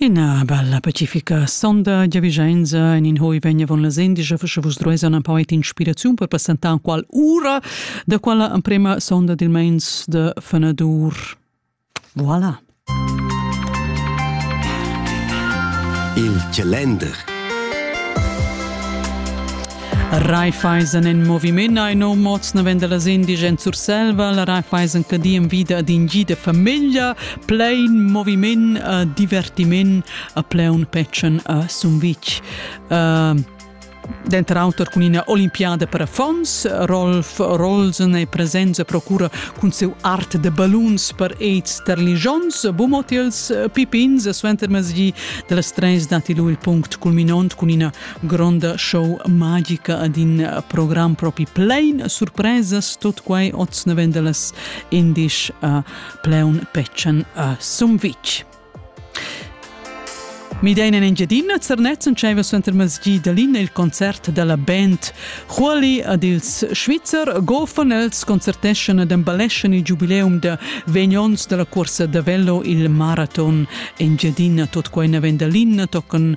Ina bella pacifica sonda giavischenza en in hoi vegna von la Sendigia fascha vus druesa una poet inspiraziun per passentar qual ura da quella emprema sonda dil meins de fenadur. Voilà. Il calender Raiffeisen en moviment ein no mods naven dallas indigens Surselva, la Raiffeisen che di en vida ad in gi de famiglia, plein moviment, uh, divertiment, a pleun petschen a Sumvitg. Uh, Denter auter cun ina olimpiada per affons, Rolf Rolsen e presenza procura cun seu art de balloons per aids ter ligions, bumotils, pipins, suenter mezgi de las treis dati lu il punct culminont cun ina gronda show magica ad in program propi plein surpresas tot quai oz naven dallas indisch a Pleun Petschen a Sumvitg. Midein en Engiadina, Zernetzen dscheva suenter masgi da Lina il concert della band Chuoli ad ils Schweizer gofen els concerteschan ed emballescen il giubileum da vegnons della corsa da velo il maraton Engiadina tot quai naven da Lina tocan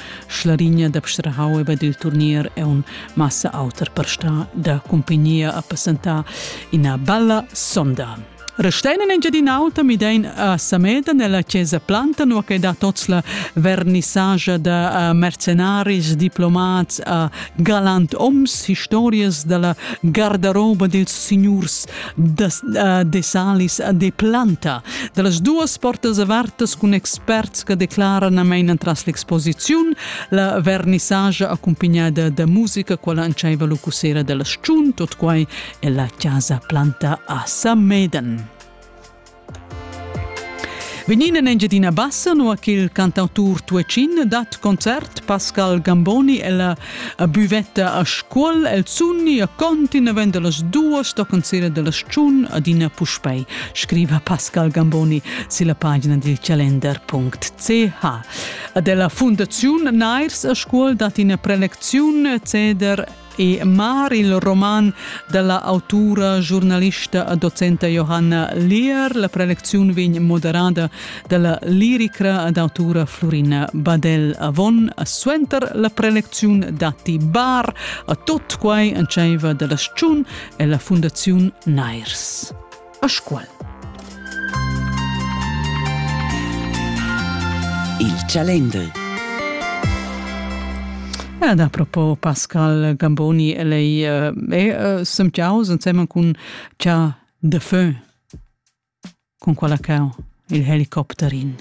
Schlarigna da Pstrahau e dil turnier è un massa auter per sta da cumpagnia a passentar ina bella sonda. Restein in Engiadin'Alta midein a Sameda nella chiesa Planta nu che da tots la vernissagia da uh, mercenaris, diplomats, uh, galant oms, historias dalla gardaroba dils signurs de, uh, de salis de planta. Da las duas portas avertas cun experts che declaran a main entras l'exposiziun la vernissage accompagnada da musica quella antschaiva lucusera della sciun, tot quai è la casa planta a Sameden. Vegnin en Engiadina Bassa, nua ch'il cantautur tuatschin dat concert Pascal Gamboni ella a Buvetta a Scuol. El sunni a conti navend las duas toccant sera della stgiun adina puspei, scriva Pascal Gamboni sulla pagina dil calender.ch. A della Fundaziun Nairs a Scuol dat ina prelecziun ceder e mar il roman dalla autura, giornalista e docenta Johanna Lehr. La prelecziun vegn moderada dalla lirica ed autura Florina Badel Avon. Suenter la prelecziun datti bar a tot quai entscheiva dalla Schun e la Fundaziun Nairs. a Scuol. Il Chalender Ja, da propo Pascal Gamboni lei e eh, semtiaus insemen cun cha de feu con quella cau il helicopterin.